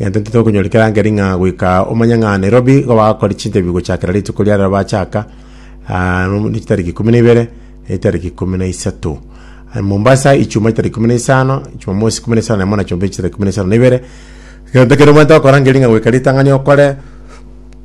Egento ki tokonyora kerangeri ng'a goika omanye ng'a Nairobi igo bagakora chinterview gochakera rituko ria rero bachaka ah, no- ne chitariki ikumi na ibere na chitariki ikumi na isato Ah, Mombasa ichuma chitariki ikumi na isano Jumamosi ikumi na isano na emo na Jumapili chitariki ikumi na isano na ibere egento kere omanyete gokora ngeri ng'a goika ritang'ani okore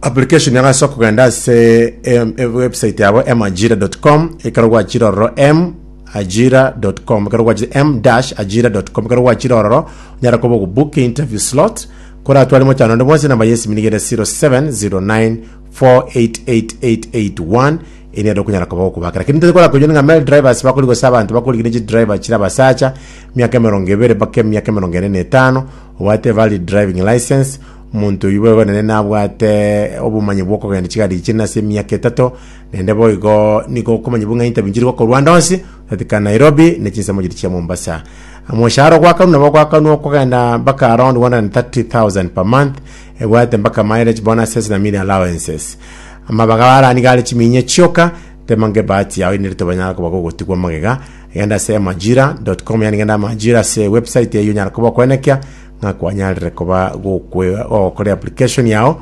application yang'ana ase okogenda ase em- em- website yabo emajira.com ekero gwachire ororo m ajira.com ekero gwachire m-ajira.com ekero gwachire ororo onyare koba ogobook interview slot koratware mochano onde bwonsi namba yesimi nigere 0709488881 eri ero kunyara koba gokubaka lakini ntote kora konyoni nga male drivers bakori gose abantu bakori gine driver chira basacha miaka emerongo ebere bake miaka emerongo ene na etano obate valid driving license omonto oyu bwegonene nabwate obomanyi bwokogenda chigari chine ase emiaka etato Naende boigo nigo okomanya buna interview nchiri gokorwa ande onsi, otatika Nairobi na chinsemo chiria chia Mombasa. Omoshahara ogwakanwa nabo gwakanwa okogenda mpaka around 130,000 per month, ebwate mpaka mileage bonuses na meal allowances. Amabaga barani gare chiminyia chioka, tema nge bahati yao inde rituba rinyara koba gogotigwa magega, genda ase emajira.com yaani genda amajira ase website eyio onyare koba okwenekia ng'a kwanyarire koba gokwe- gokora application yao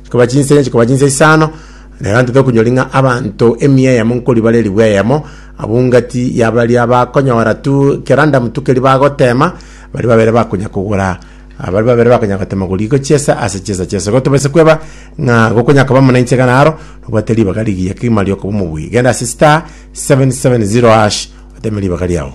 Chikoba chinse ne chikoba chinse isano, na egento tokonyori ng'a abanto emia eyemo nkori bare ribu eyemo, abwo ngati ya baria bakonyora tu kera ndamutu keri bagotema, baria babere bakonya kogora ah, baria babere bakonya gotema goriko chiesa ase chiesa chiaso. Igo tobaisa kweba ng'a gokonya koba muna inche iga naro, nobwate ribaga rigiya kegima riokoba omobui. Genda ase star 770 hash oteme ribaga riao.